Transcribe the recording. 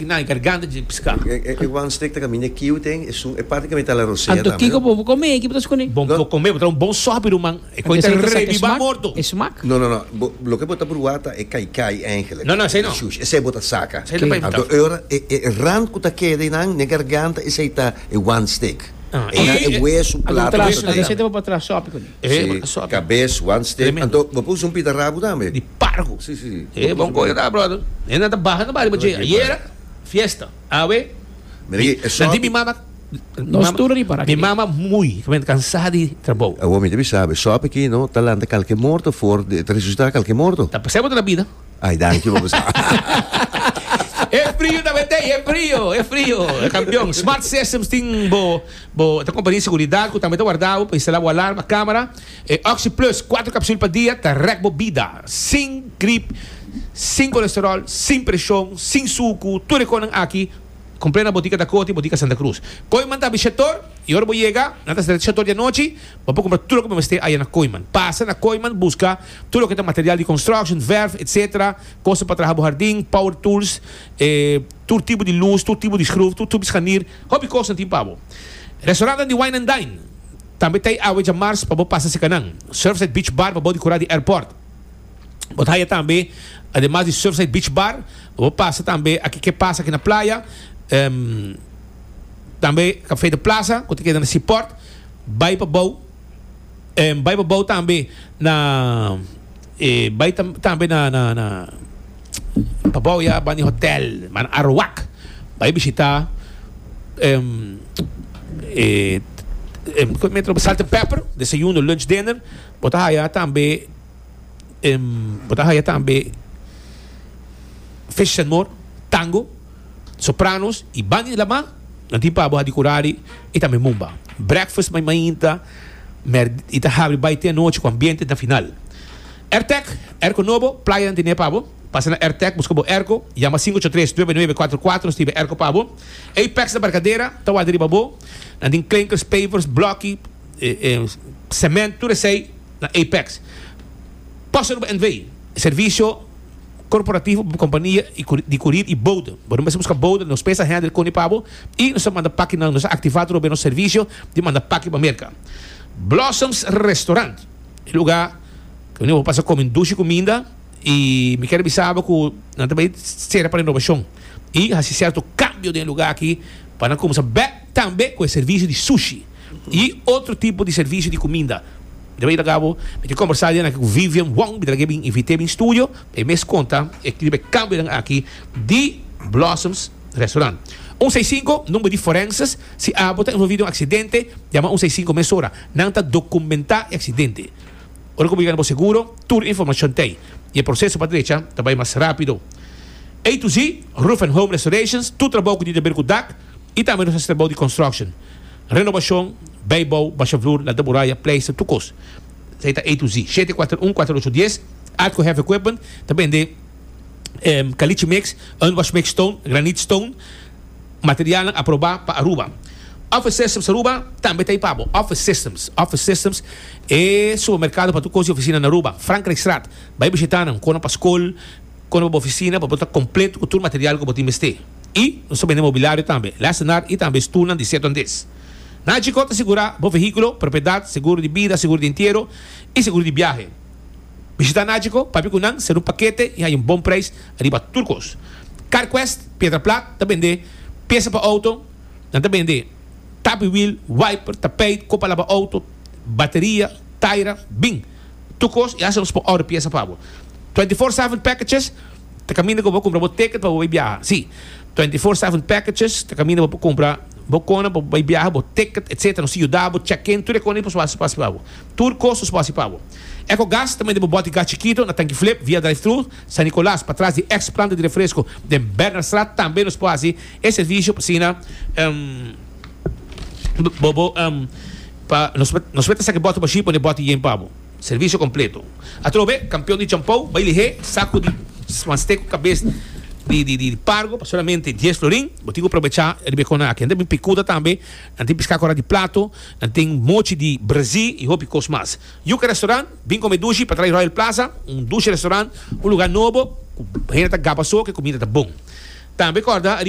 I na e garganta dje piská. E e one stick ta kaminda e kiu ten esun e parti kaminda ta la rosea tambe no. Anto kiko bo por komé eki bo ta skuné? Bo por komé, bo ta un bon sòpi ruman. E koi ta rebibá morto. E smak? No no no, bo loke bo ta pruwá ta e kai kai èngele. No no esei no. Shush, esei bo ta saka. Esei no pa imitá. Anto e ora e e rand ku ta keda einan n'e garganta esei ta e one stick. Einan e wesu plato ku ta ta einan. Anto esei ta bo por tra sòpi kuné. Esei bo ta sòpi. Kabes, one stick, anto bo por usa un pita rabu tambe? pargo. Sí, sí, sí. E bon cosa ta, brother. E nan ta baha na bario pa dje. Ayera, fiesta. Awe, Mira aki, e nan di mi sòpi. mama, mi Nos mama, tur riba mi aki. mama muy, ta benta cansá di trabou. Awor mi ta bisa, e sòpi aki, no, ta lanta kalke morto for di, ta resusitá kalke morto. Ta pasá bo ta na bida. Ay, danki bo pues. E frio ta bent'ei, e frio, e frio. Campeón, Smart Systems tin bo, bo, ta compañía di seguridad cu tambe ta warda bo, pa instala bo alarma, camera. E Oxi Plus, kuater kapsul pa dia, ta rèk bo bida. Sin grip, sin kolesteròl, sin preshon, sin suku, tur e kosnan aki kompr'é na botika Dakote, botika Santa Krus. Koiman ta abi Shator i ora bo yega, nan ta sèt Shator di anochi, bo por kumpra tur loke bo mester aya na Koiman. Pasa na Koiman buska tur loke ta material di construction, verf, etc. Kosnan pa traha bo hardin, power tools, e tur tipo di lus, tur tipo di skruf, tur tipo di scharnier, hopi kosnan tin pa bo. Restaurantnan di wine and dine. Tambe ta e awe dja mars pa bo pasa seka nan. Surfside Beach Bar pa bo di kura di airport. Bo ta haya tambe ademas di Surfside Beach Bar pa bo pasa tambe aki ke pasa aki na playa, ehm, tambe Café de Plaza ku ta keda na Seaport, bai pa bou, ehm, bai pa bou tambe na. E bai tam, tambe na, na, na Pabao ya bani hotel, man Arawak. Bai bishita em, e, em, kon metro Salt and Pepper, desayuno, lunch, dinner. Bo ta haya tambe, em, bo ta haya tambe Fish and More, Tango. Sopranos y banda di lama nan tin pabo hadi kurari y tambe mumba. Breakfast mai mainta mer y ta habri bai te anochi ku ambiente na final. Ertec, Erco Nobo, Playa nan tene pabo. Pasa na Ertec buska bo Erco, yama sinku ocho tres nuebe nuebe kuater kuater stibe Erco pabo. Apex na Barcadera ta wak riba bo. Nan tin klinkers, pavers, bloki, cement tur esei na Apex. Posa Aruba NV. Servicio. Korporativo, kompania di kurir i bouda. Bo no mester buska bouda, nos pesa hèndel koni pa bo i nos ta manda paki nan. Nos a aktivá tur hopi nos servisio di manda paki pa Merka. Blossoms Restaurant, e lugá wei bo pasa komi dushi kuminda i mi kere bisa bo ku nan ta bai sera pa renobashon i hasi sèrto kambio den e lugá aki pa nan kumsa bèk. Tambe cu e servicio di sushi y otro tipo di servicio di cuminda. Riba e ta cabo, mi tin combersa dianan aki cu Vivian Wong, mi ta laga e bin invite bin studio, e mes conta e riba e cambionan aki di Blossoms Restaurant. Un seis cinco, number di forenses, si abo ta envolvi den un accidente, yama un seis cinco mesora. Nan ta documenta e accidente. Ora cu bo yega na bo seguro, tur e informacion ta ey y e proceso pa drecha ta bay mas rapido. A to Z Roof and Home Restorations, tur trabao cu tin ta ber cu dak, I tambe nos a stra bou di construction, renobacion, bay bou, basha vloer, lanta muraya, pleister, tur cos. Esey ta A to Z. Shete cuater un cuater ocho dies, Atco Heavy Equipment ta bende caliche mix, unwash mix stone, granite stone, materialnan aproba pa Aruba. Office Systems Aruba tambe ta ey pa bo. Office Systems, Office Systems e supermercado pa tur cos di oficina na Aruba. Frankrijkstraat, bay bishita nan, con nan pa scol. Konde bo bo ofisina pa bo ta kompleto ku tur material ku bo tin mester. I nos ta bende mobilario tambe, lèsenar i tambe stulnan di sierto andes. Na Chicó ta sigurá bo vehíkulo, propiedat, seguro di bida, seguro di entiero i seguro di biahe. Bishitá na Chicó, papia ku nan, ser un pakete i haña un bon preis ariba tur kos. Carquest Piedra Plat ta bende piesa pa outo, nan ta bende tapi wiel, wiper, tapeit, kopa laba outo, bateria, taira, bin. Tur cos, ya sa nos por order pieza pa bo. Twenty four seven packages ta caminda cu bo cumpra bo ticket pa bo bay biaha. Si, Twenty four seven packages ta caminda bo por cumpra bo cona pa bo bay biaha, bo ticket etc. Nos ta yuda bo check in, tur e cona nos por haci pa bo. Tur cos nos por haci pa bo. Ecogas ta mete bo boti gas chikito na tanki flip via drive thru San Nicolas patras di ex planta di refresco den Bernardstraat. Tambe nos por haci e servicio pa asina. Bobo, Pa nos mester sa ki bòt mashín pone bòt i yen pa bo. Servisio kompleto. Atrobe, kampion di champou bai lihé saku di mast'é ku kabes di pargo pa solamente dies florin. Bo tin ku probechá riba e kona aki. Nan ta bin pikuda tambe, nan tin peská kora di plato, nan tin mochi di brazí i hopi kos mas. Yuka Restoran bin kome dushi pa trai Royal Plaza, un dushi restoran, un lugá nobo ku hende ta gaba so ku e kumida ta bon. Tambe kòrda riba.